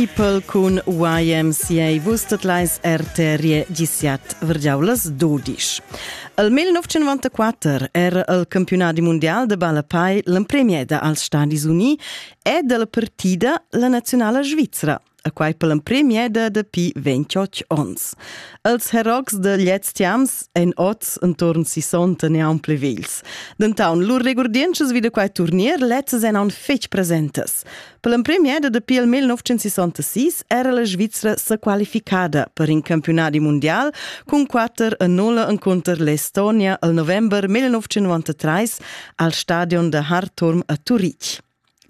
People cun YMCA vus tot leis RTR gisiat vergiaulas dodisch. El 1994 era el campionadi mondial de ballapai l'empremieda als Stadis Uni ed el partida la nazionala Svizra a quai per l'empremieda dapi 28 ons. Els herogs de gliez tiams en oz entorn 60 neon plevils. Dentaun lur regurdientschas vi da quai turnier lezzas en aun fetg presentas. Per l'emprim è dapi il 1966 era la Svizra sa qualificada per in campionadi mondial cun 4 a 0 encunter l'Estonia al november 1993 al stadion da Hartorm a Turitg.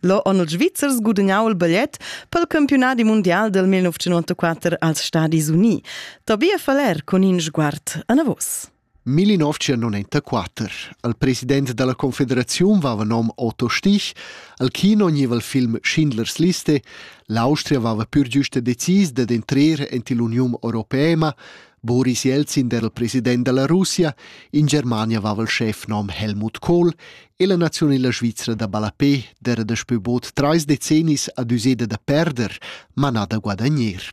Lo on ils Svizzers gudagnau il bigliet pel campionadi mondial del 1994 als Stadis Uniti. Tobia Faller con in sguard anavos. Millinovcia non enta quater. Al president dalla confederaziun vava nom Otto Stich, al kino gneva il film Schindlers Liste, l'Austria vava pur giusta decis dad entrer ent ill'Uniun Europeema, Boris Jelzin era il president della Russia, in Germania vava il chef nom Helmut Kohl e la nazionela Svizra da Balapé dera daspö bod trais decennis ad useda da perder, manà da guadagner.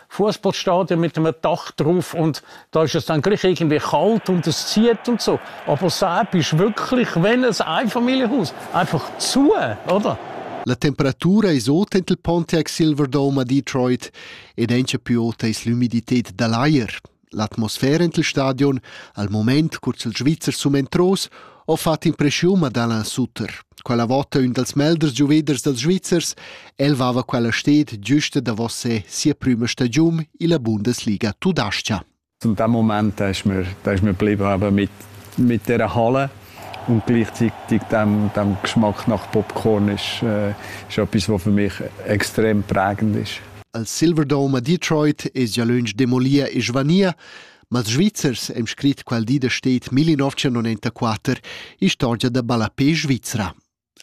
Fußball stadion mit einem Dach drauf und da ist es dann gleich irgendwie kalt und es zieht und so. Aber Saab ist wirklich, wenn ein Einfamilienhaus, einfach zu, oder? La temperatura es ot ent il Pontiac Silverdome a Detroit ed encha più ota es l'umidität da l'ajer. L'atmosfera en il stadion, al mument cur ch'il Svizzer sum entros, ho fat impreschiun ad Alain Sutter. Quella vota ün dals melders giuveders dals Svizzers, el vava quella sted giusta davos se sia prüma stagiun illa Bundesliga tudascha. In dem Moment da ich mir, da ich mir blieb aber mit, mit der Halle und gleichzeitig dem, dem Geschmack nach Popcorn ist, äh, ist etwas, was für mich extrem prägend ist. Al Silverdome a Detroit es gia lönch demolir e svanir, ma ils Svizzers hem scrit qual di da stet 1994 istorgia da ballapé svizra.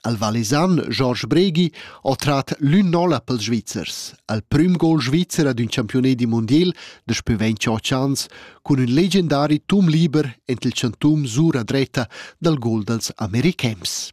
Al Valesan Georges Bregi ho trat l'ün nolla pels Svizzers, al prüm gol svizzer ad ün campione di mondiel daspü 28 ans cun ün legendari tum liber ent il chantum sura dretta dal gol dals americhems.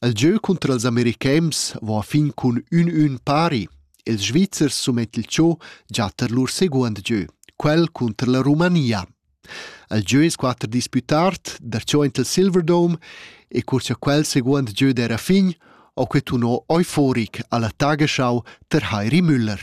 El gieu cunter ils americhems va a fin cun ün-ün pari. Ils Svizzers sumet il cho già tar lur seguond gieu, quel cunter la Romania. El gieu es quatter disputard, darcho int il Silverdome e cur cha quel seguond gieu d'era fin, ho que tuno euforic alla Tagesschau ter Heiri Müller.